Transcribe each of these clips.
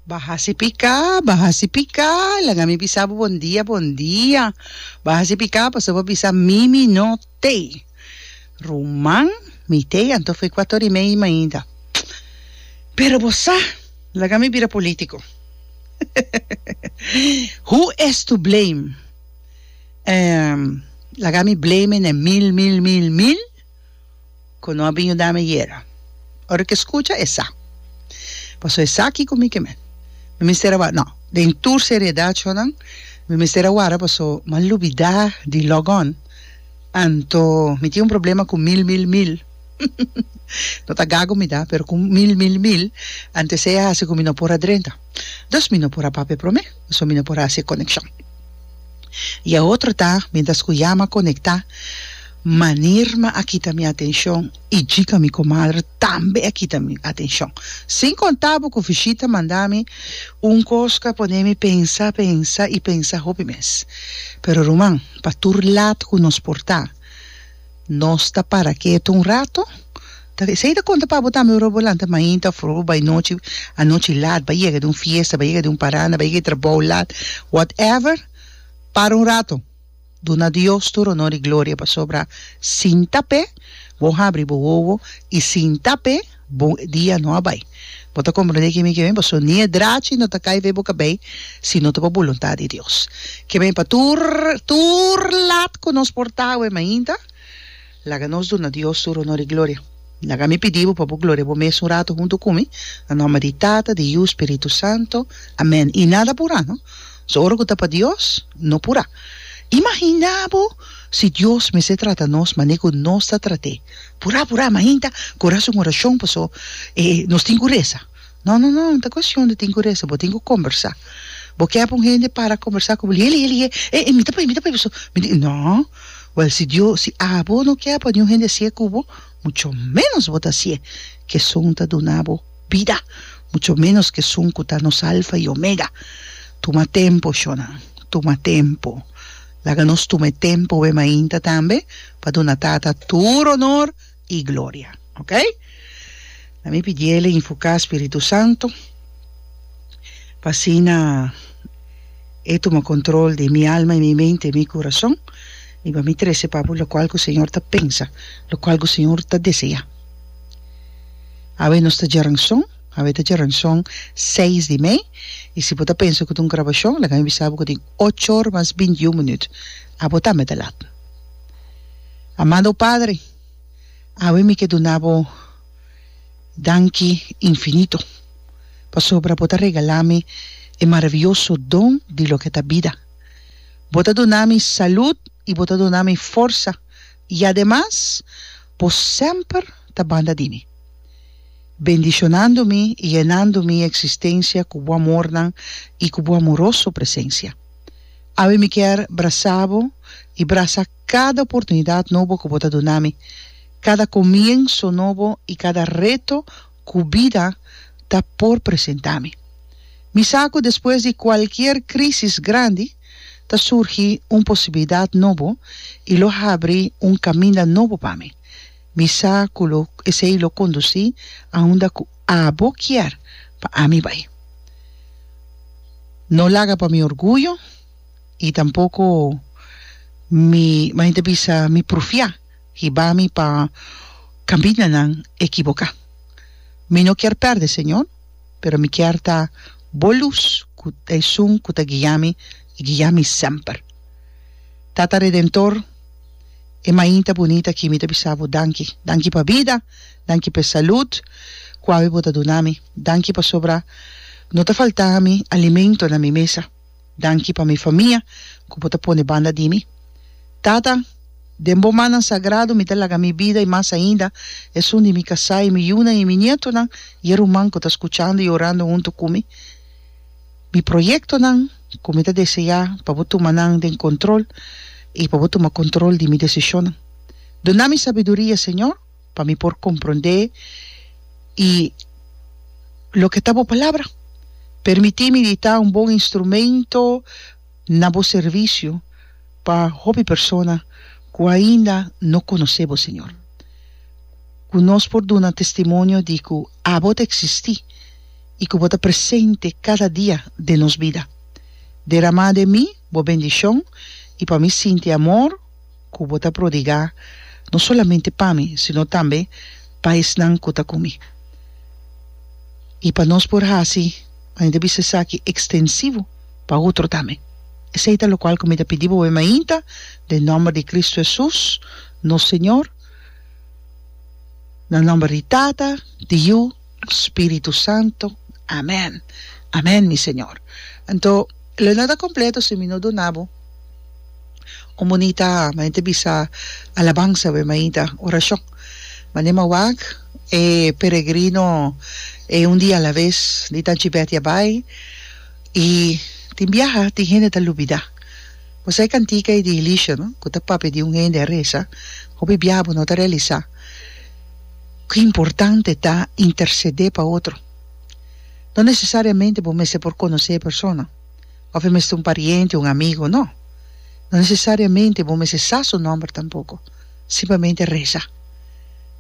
Ba hasi piká, ba hasi piká, laga mi bisa bo bon dia, bon dia. Ba hasi piká pasobra bo bisa mi mi no tei. Ruman, Mi tei anto fu kuato ori mei mainta. Pero bo sa, laga mi bira polítiko. Who is to blame? Ehm, laga mi blame e na mil, mil, mil, mil. cu no a bin yuda mi yera. Ora cu e scucha esa. Pasobra esaki cu mi kimen. Mi mester a wara. No, den tur seriedad sjonan, mi mester a wara pasobra mi a lubida di log on. Anto mi tin un problema cu mil, mil, mil. No ta gago mi ta, pero cu mil, mil, mil, anto esey a haci cu mi no por a drenta. dos mi no por a papia prome so mi no por a hasi e konekshon y e otro ta mientras ku ya ma konekta manir ma a kita mi atenshon y djika mi komadre tambe a kita mi atenshon sin konta bo ku Vishita manda mi un kos ku a pone mi pensa pensa y pensa hopi mes pero ruman pa tur lat ku nos por ta Nos ta para ketu un rato. Ta esei ta konta pa bo tambe ora bo lanta mainta of ora bo bai nochi anochi lat bai yega di un fiesta bai yega di un paranda bai yega di trabou lat whatever para un rato duna Dios tur honor y gloria pasobra sin ta p'e bo habri bo wowo y sin ta p'e Bo e dia no a bai. Bo ta komprendé ke mi ke ben paso ni e drachi no ta kai vei bo kabei si no ta bo boluntat di Dios. Ke ben pa tur tur lat ku nos por ta awe mainta. Laga nos duna Dios tur honor i gloria. Laga mi pidi bo pa bo gloria bo mes un ratu huntu ku mi, na nòmber di Tata, di Yu, Spiritu Santo. Amèn. I nada purá no. So ora ku ta pa Dios no purá. Imaginá bo si Dios mester trata nos mané ku nos ta trat'é. Purá purá mainta ku ora su orashon paso e nos tin ku resa no no no no ta kuestion di tin ku resa bo tin ku kombersá bo kep un hende para kombersá ku bo lihe lihe lihe e e mi ta poi mi ta poi paso mi di no wèl si Dios si abo no kep pa niun hende hasié ku bo mucho ménos bo ta hasié ku esun ta duna bo bida mucho ménos ku esun ku ta nos alfa i omega tuma tempo shona tuma tempo. Laga nos tuma e tempu e mainta tambe pa duna Tata tur onor i gloria. Oke. Na mi pidiel e infuká Spiritu Santu pa asina E tuma kontrol di mi alma i mi mente i mi kurason i pa mi trese papu lokual ku Señor ta pensa, lokual ku Señor ta deseá. Awe nos ta djaranson, awe ta djaranson seis di mei i si bo ta pensa ku ta un grabashon laga mi bisa bo ku tin ochor mas binti un minüt. Abo tambe ta lat. Amado Padre, awe mi ke duna bo danki infinito pasobra bo ta regalá mi e maravioso don di loke ta bida. Bo ta duna mi salud i bo ta duna mi forsa y ademas bo semper ta banda di mi, bendishonando mi y yenando mi existencia cu bo amornan y cu bo amoroso presencia. Awe mi kier brasa bo y brasa cada oportunidad nobo cu bo ta duna mi, cada comienso nobo y cada reto cu bida ta por presenta mi. Mi sa cu despues di cualkier crisis grandi ta surgi un posibilidad nobo y lo habri un caminda nobo pa mi. Mi sa cu lo esey lo conduci aunda cu abo kier pa ami bay. No laga pa mi orguyo y tampoco mi, mi ta bisa mi prufia Hiba mi pa caminanan equivoca. Mi no kier perde, Señor, pero mi kier ta Bo luz cu ta esun cu ta guia mi y guia mi semper. Tata Redentor, e mainta bunita aki mi ta bisa Bo danki. Danki pa bida, danki p'e salud cu awe Bo ta duna mi. Danki pasobra no ta falta mi alimento na mi mesa. Danki pa mi famia ku bo ta pone banda di mi. Tata, den bo mannan sagradu mi ta laga mi bida i mas ainda esun di mi kasá i mi yunan i mi nietonan i e ruman ku ta skuchando i orando huntu ku mi. Mi proyektonan ku mi ta deseá pa bo tuma nan den kontrol i pa bo tuma kontrol di mi desishonnan. Duna mi sabiduria, Señor. pa mi por comprende y loke ta bo palabra. Permiti mi di ta un bon instrumento na bo servicio pa hopi persona cu ainda no conoce bo Señor. Cu nos por duna testimonio di cu abo ta existi y cu bo ta presente cada dia den nos bida. Derama den mi bo bendicion y pa mi sinti amor, ku bo ta prodigá no solamente pa mi, sino tambe pa esnan ku ta ku mi. I pa nos por hasi mane ta bisa esaki ekstensivo pa otro tambe. Esei ta lokual ku mi ta pidi boe mainta, den nòmber di Kristu Hesus, nos Señor, na nòmber di Tata, di Yu, Spiritu Santo. Amen. Amen mi Señor. Anto lo no ta completo si mi no duna bo un bunita mainta bisa alabanza we mainta oracion. Mane ma wak e peregrino e un dia a la vez di tanchi Betty a bai y tin biaha tin hende ta lubida. Bosa e cantica y di Elisha no cu ta papia di un hende a reza hopi biaha bo no ta realisa. Ki importante ta intersedé pa otro? No nesesariamente bo mester por konosé e persona, òf e mester un pariente, un amigu. No. No nesesariamente bo mester sa su nòmber tampoko. Simplemente resa.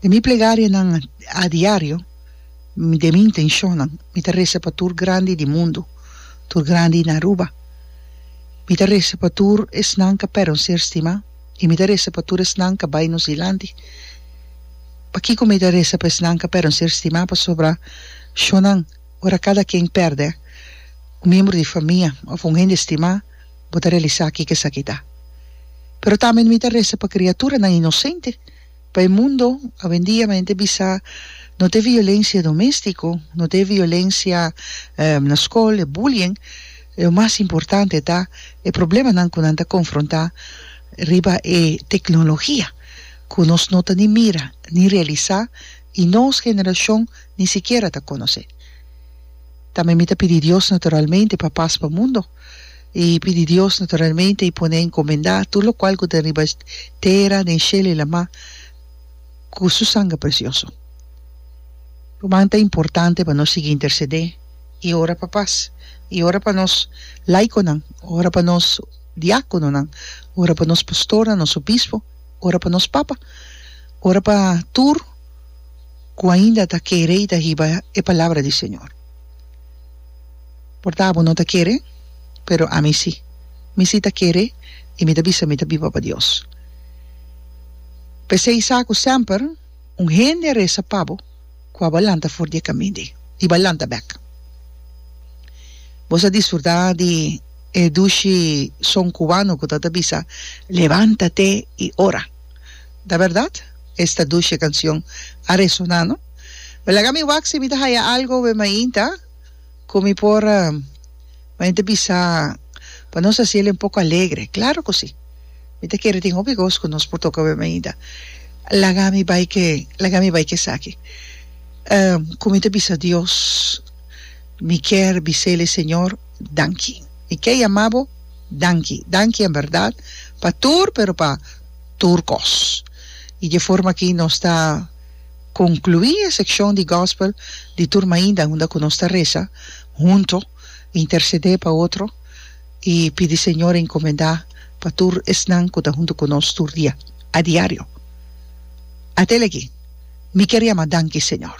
Den mi plegarianan a diario, den mi intenshonnan, mi ta resa pa tur grandi di mundu, tur grandi na Aruba. Mi ta resa pa tur esnan ku a pèrdè un ser stimá. y mi ta resa pa tur esnan ca bay nos dilanti. Pakico mi ta resa pa esnan ca perde un ser stima pasobra shonan ora cada ken perde un miembro di famia of un hende stima bo ta realisa kico esaki ta. Pero tambe mi ta resa pa criaturanan inocente. Pa e mundo awendia mi ta bisa no ta e violencia domestico, no ta e violencia na scol, e bullying, lo mas importante ta e problemanan cu nan ta confronta riba e tecnologia cu nos no ta ni mira ni realisa y nos generacion ni sikiera ta conoce. Tambe mi ta pidi Dios naturalmente pa paz pa mundo. i pidi Dios naturalmente i pone a encomendá tur lokual ku ta riba tera, den shelu i lamá ku su sangre presioso. Ruman, ta importante pa nos sigui intersedé i ora pa pas, i ora pa nos laikonan, ora pa nos diákononan, ora pa nos pastornan, nos obispo, ora pa nos papa, ora pa tur ku ainda ta kere i ta hiba e palabra di Señor. Por ta bo no ta kere, pero ami si. Mi si ta kere i mi ta bisa mi ta biba pa Dios. P'esei sa ku semper un hende a resa pa bo ku abo a lanta for di e kamin di i bo a lanta bek. Bo sa disfrutá di e dushi son kubano ku ta ta bisa, Levántate y ora. Ta bèrdat? Esta dushi kansion a resoná, no? Mi laga mi wak si mi ta haya algo weh mainta cu mi por mainta bisa pa nos haci el un poco alegre. Claro cu si. Mi ta kere tin hopi cos cu nos por toca weh mainta. Laga mi bay ke, laga mi bay ke esaki. Um cu mi ta bisa Dios, mi kier bisa el, Señor, danki. Mi kier yama bo danki. Danki en berdad pa tur, pero pa tur cos. Y dje forma aki nos ta. Conclui e seccion di Gospel di tur mainda unda cu nos ta reza hunto, intercede pa otro y pidi Señor a encomenda pa tur esnan cu ta hunto cu nos tur dia, a diario. Atel aki mi kier yama danki Señor.